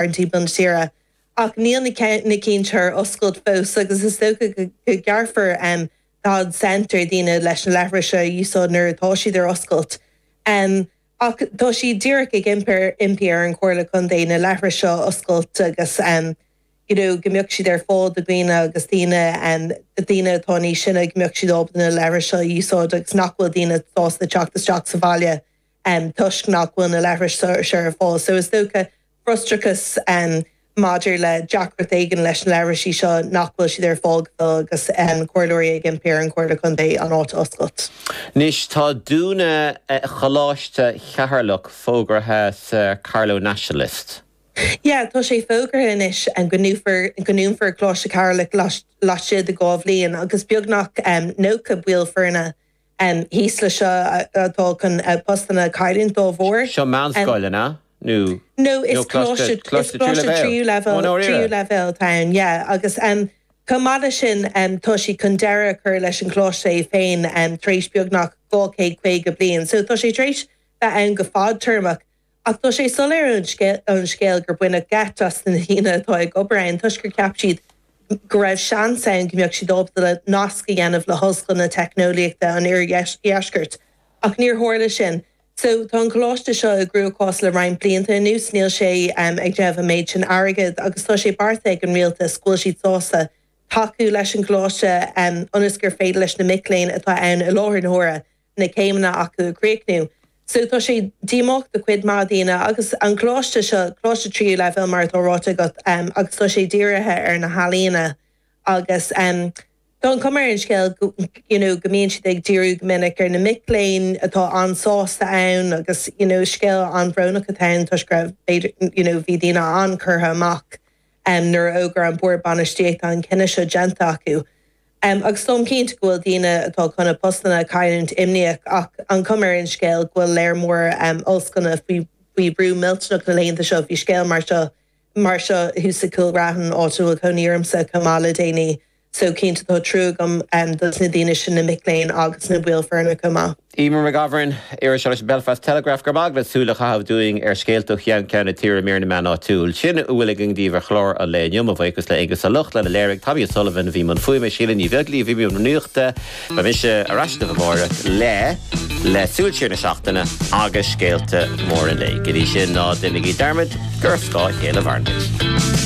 Corn Timpeall na Tíre ach níl na cinn seo ar oscailt fós agus is dócha go gearrfar gad cent ar dhaoine leis na leithris seo a úsáid nuair atá siad ar oscailt. Ach tá siad díreach ag impí ar an Chomhairle Contae na leithris seo a oscailt agus you know go mbeadh siad ar fáil do dhaoine agus daoine daoine atá níos sine go mbeadh siad ábalta na leithris seo a úsáid agus nach bhfuil daoine sásta teacht isteach sa bhaile. ann toisc nach bhfuil na leithris seo ar fáil. So is dócha frustrachas maidir le deacracht éigin leis na leithrisí seo nach bhfuil siad ar fáil go fóill agus na comhairleoirí ag impí ar an Chomhairle Contae an áit a oscailt. Anois tá dúnadh Choláiste Cheatharlach fógartha sa Carlow Nationalist. Yeah tá sé fógartha anois go ndúnfar Coláiste Cheatharlach laistigh de dhá bhliain agus beagnach 90 baill foirne am thíos leis seo atá chun postanna a chailliúint dá bharr. Seo meánscoil, an ea? Nó. No, is coláiste tríú leibhéal, tríú leibhéal atá ann, yeah. Agus chomh maith leis sin tá siad chun deireadh a chur leis an choláiste é féin tar éis beagnach dhá chéad caoga bliain. So tá sé tar éis bheith ann go fad-téarmach. Ach tá sé soiléir ón scéal gur baineadh geit as na daoine atá ag obair ann toisc gur cheap siad go raibh seans ann go mbeadh siad ábalta nasc a dhéanamh le hOllscoil na Teicneolaíochta an Oirdheiscirt. Ach níor tharla sin. Só, tá an coláiste seo i gcruachás le roinnt blianta anuas. Níl sé ag déanamh an méid sin airgead agus tá sé beartaithe ag an rialtas go bhfuil siad sásta tacú leis an gcoláiste ionas gur féidir leis na mic léinn atá ann i láthair na huaire na céimeanna acu a chríochnú. So tá sé díomách do chuid mhaith daoine agus an coláiste seo, coláiste tríú leibhéal mar atá ráite agat agus tá sé dírithe ar na healaíona agus tá an chuma ar an scéal you know go mbíonn siad ag díriú go minic ar na mic léinn atá an-sásta ann agus you know scéal an-bhrónach atá ann toisc go raibh b'fhéidir you know bhí daoine an-curtha amach nuair a fhógair an Bord Bainistíochta an cinneadh seo déanta acu agus táim cinnte go bhfuil daoine atá chun a postanna a chailliúint imníoch ach tá an chuma ar an scéal go bhfuil léar mór ollscoileanna faoi bhrú millteanach na laethanta seo. Bhí scéal mar seo thuas i gCúil Raithin, áit a bhfuil cónaí ormsa, chomh maith le déanaí. So cinnte tá trua agam dos na daoine sin, na mic léinn agus na baill foirne chomh maith. Eimear McGovern, Iriseoir leis an Belfast Telegraph, go raibh maith agat as súil a chaitheamh dúinn ar scéalta ó cheann ceann na tíre Mír na Meán Áitiúil. Sin a bhfuil againn daoibh ar chlár an lae inniu. Mo bhuíochas le Aonghus Ó Lochlainn a léirigh Tommy O'Sullivan a bhí i mbun fuaime, Síle Ní Bheaglaoí a bhí i mbun na nuachta. Beidh mise ar ais libh amárach le le súil siar na seachtaine agus scéalta móra an lae. Go dtí sin ná déanaigí dearmad gur ar scáth a chéile a mhaireann muid.